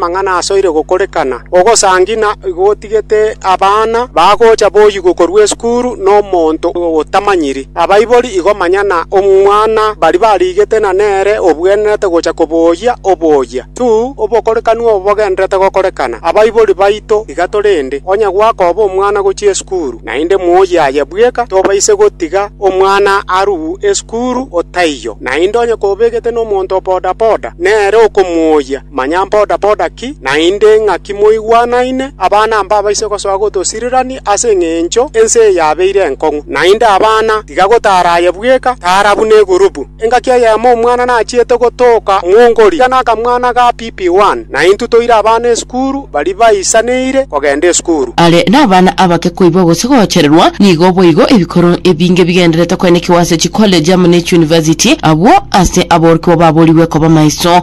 amang'ana asoire gokorekana, ogosangi na igo otigete abana bagocha boyigwe korwa esukuru nomonto otamanyiri. Abaibori igo manya na omwana baria barigete na nere obwenerete gocha koboyia oboyia. Tu, obokorekanu obo bogendererete gokorekana. Abaibori baito iga torende, onye gwakoba omwana gochia esukuru, naende moyie aye bweka, tobaise gotiga omwana arue esukuru otaiyo. Naende onye kobegete nomonto o bodaboda, nere okomoyia, Manya mbodaboda ki naende ng'aki moigwanaine, abana mbabaise gosoa gotosirirania ase engencho ense eyabeire enkong'u. Naende abana tiga gotaraye bweka, tara buna egurubu. Engaki eyemo omwana nachiete gotoka mwongori, iga nakamwana ga PP1, na intwe toire abana esukuru baria baisaneire kogenda esukuru. Are nabana abake koiba gose gochererwa, nigo boigo ebikoro ebinge bigendererete koenekigwa ase chikolegi amo ne chiunivasiti, abwo ase aborokigwa baborigwe koba maiso.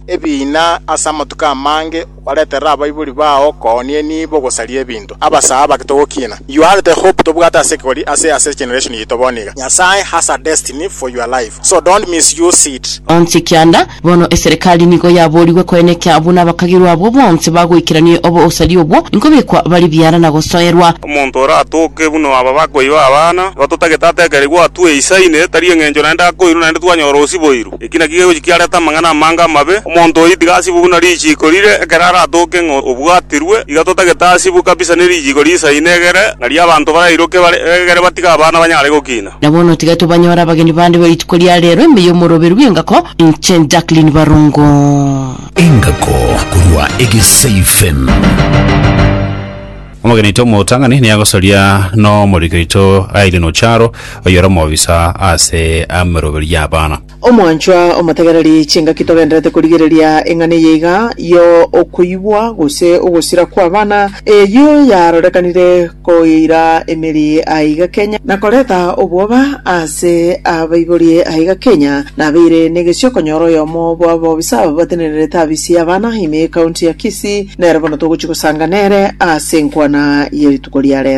ebiina ase amatuko amange obareterere abaibori bao kooni enibo ogosaria ebinto. Abasaa abake togokiina. You had the hope tobwate ase ekegori ase ase generation yaito bono iga. Nyasae has a destiny for your life so don't misuse it. Onsi kianda, bono eserekari nigo yaboorigwe koeneka buna abakagirwa abwo bonsi bagoikerania obosaria obwo, nkobekwa bare biara na gosoerwa. Omonto oratoke buna aba bakoiba abana, nigo totagete atekerwe igo atue Isaine, tari engencho naende akoirwa naende twanyora osiboirwe. Eki nakio kegochi kiarete amang'ana amange amabe. Omonto oyio tiga asibwe buna richiiko rire ekero aratoke ng'a obwatirwe. Iga totagete asibwe kabisa ne richiiko riisaine egere, ng'a ri'abanto barairoke bare egere batige abana banyare gokina. Na bono tiga tobanyore abageni bande be rituko ria reero ime y'omoroberu bw'engako, inche Jacqueline Barongo. Engako korwa Egesaifem. Omogeni oito omotang'ani nigo agosaria n'omoriki oito Aileen Ocharo, oyore omobisa ase emeroberio y'abana. Omwanchwa omotegereri, chingaki togenderete korigereria eng'ana eye iga yo okoigwa gose ogosira kw'abana, eyio yarorekanire koira emeri aiga Kenya, na koreta obwoba ase abaibori aiga Kenya, nabeire negesio konyora oyomo bw'abobisa aba batenenerete abisirie abana ime County ya Kisii. Ase nere bono togochia gosanga nere ase enkwana ye rituko ria rero.